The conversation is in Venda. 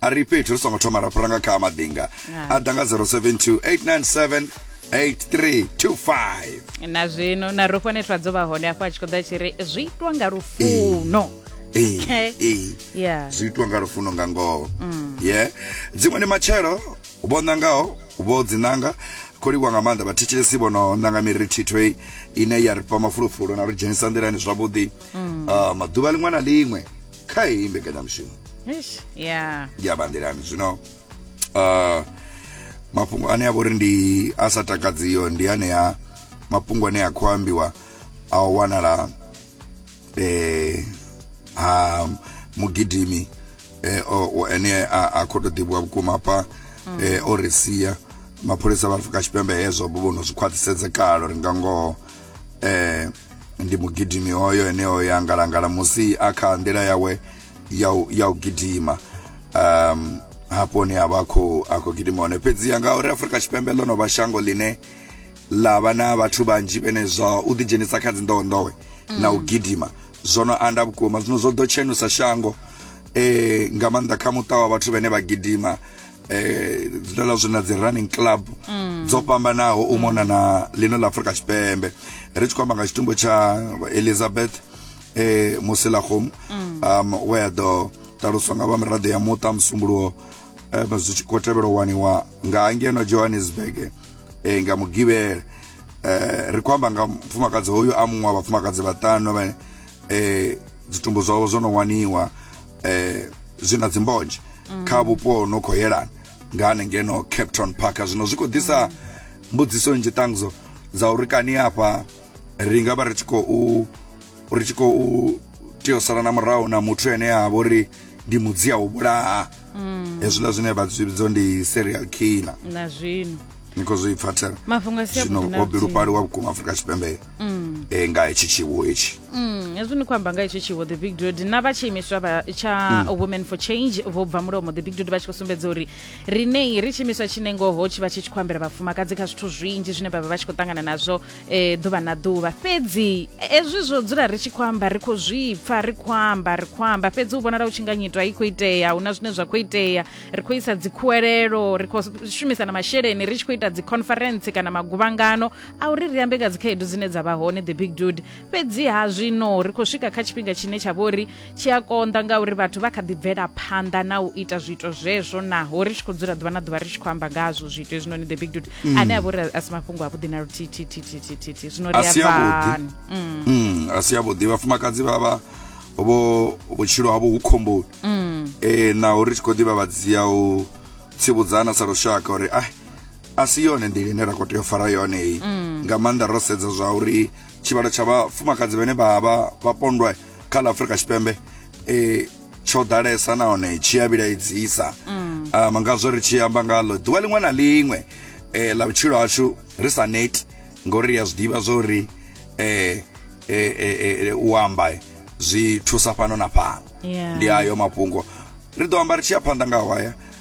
A ri fhethu ri songo thoma ra fhira nga kha maḓinga a ḓa nga 072 897 8325 na zwino na rufho netwa dzo vha hone afho a tshi khou ḓa a tshi ri zwi itwa nga lufuno Ee, Okay. ee. Yeah. zwi itwa nga lufuno nga ngoho ye dziṅwe ndi matshelo vho ṋangaho vho dzinanga khou livhuwa nga maanḓa vhathetshelesi vho no ṋanga miri thitho i- ine ya ri fha mafulufulu na ri dzhenisa nḓilani zwavhuḓi Ah, maḓuvha liṅwe na liṅwe kha heyi mbekanyamushumo Eish, ya ya bandelani zwino uh, mafhungo ane a vhori ndi a sa takadziyo ndi anea mafhungo ane a khou ambiwa a u wanala eh, ha mugidimi eh, o- o- ane a, a khou tou ḓivhiwa vhukuma hafha eh, o ri sia mapholisa vha afrika tshipembe hezwo vho vho no zwi khwaṱhisedza kale uri nga ngoho eh, ndi mugidimi hoyo ene o ya ngalangala musi a kha nḓila yawe ya u gidima um hafho hune a vha khou a khou gidima hone fhedziha ngauri afurika tshipembe ḽo no vha shango ḽine ḽa vha na vhathu vhanzhi vhene zwa u ḓidzhenisa kha dzinḓowenḓowe mm. na u gidima zwo no anda vhukuma zwino zwo ḓo tshenusa shango eh nga maanḓa kha muṱa wa vhathu vhene vha gidima eh dzine la zwi na dzi running club mm. dzo fhambanaho u mona na lino la Afrika Tshipembe ri tshi khou amba nga tshitumbo tsha Elizabeth eh Musilagom mm. um where do taluswa nga vha miraḓo ya muṱa musumbuluwo eh zwi tshi khou tevhelwa waniwa nga hangeno Johannesburg eh nga mugivhele eh ri khou amba nga mfumakadzi hoyu a muṅwe wa vhafumakadzi vhaṱanu vhane eh dzitumbu zwavho zwo no waniwa eh zwi na dzimbonzhe mm. kha vhupo no khou yelana nga hanengeno cape town park zwino zwi khou ḓisa mbudziso nnzhi ṱangzo dza uri kani hafha ri nga vha ri tshi khou ri tshi khou tea u sala na murahu na muthu ene a vha uri ndi mudzi a u vhulaha mm. hezwiḽa zwine vha zwi vhidzo ndi serial killer na zwino ni khou zwi pfathela zwino wo bilufhaliwa vhukuma afrika tshipembe mm. e, nga hetshi tshiwo hetshi mm, hezwi ni khou amba nga hetshi tshiwo the big dud na vha tshiimiswa vha tsha mm. women for change vho bva mulomo the big dud vha tshi khou sumbedza uri rinei ri tshiimiswa tshine ngoho tshi vha tshi tshi khou ambela vhafumakadzi kha zwithu zwinzhi zwine vhavha vha tshi khou ṱangana nazwo um ḓuvha na ḓuvha fhedzi hezwi zwo dzula ri tshi khou amba ri khou zwi pfa ri khou amba ri khou amba fhedzi u vhonala u tshi nga nyitwa i khou itea hu na zwine zwa khou itea ri khou isa dzikhuwelelo ri khou shumisa na masheleni ri tshi khou ita dzi conference kana maguvhangano a uri ri ambe nga dzikhaedu dzine dza vha hone the big dude fhedziha zwino ri khou swika kha tshifhinga tshine tsha vho uri tshi a konḓa ngauri vhathu vha kha ḓi bvela phanḓa na u ita zwiito zwezwo naho ri tshi khou dzula ḓuvha na ḓuvha ri tshi khou amba ngazwo zwiito hezwinoni the big dude mm. ane a vha uri a si mafhungo avhuḓi na luthithithithithithithi zwino ri avhani mm. mm, a si avhuḓi vhafumakadzi vha vha vho vhutshilo havho hu khomboni um naho ri tshi khou ḓivha vhadzia u tsivudzana sa lushaka uri ai a si yone nḓila ine ra khou tea u fara yone iyi mm. nga maanḓa ro sedza zwa uri tshivhalo tsha vhafumakadzi vhane vha vha vha pondwa kha ḽa afurika tshipembe um tsho ḓalesa nahone tshi a vhilaedzisa mm. um ngazwo ri tshi amba ngaḽo ḓuvha liṅwe na liṅwe um ḽa vhutshilo hashu ri sa neti ngori ri a zwi ḓivha zwo uri um u amba zwi thusa fhano na fhano ndi ayo mafhungo ri ḓo amba ri tshi ya phanḓa nga hwaya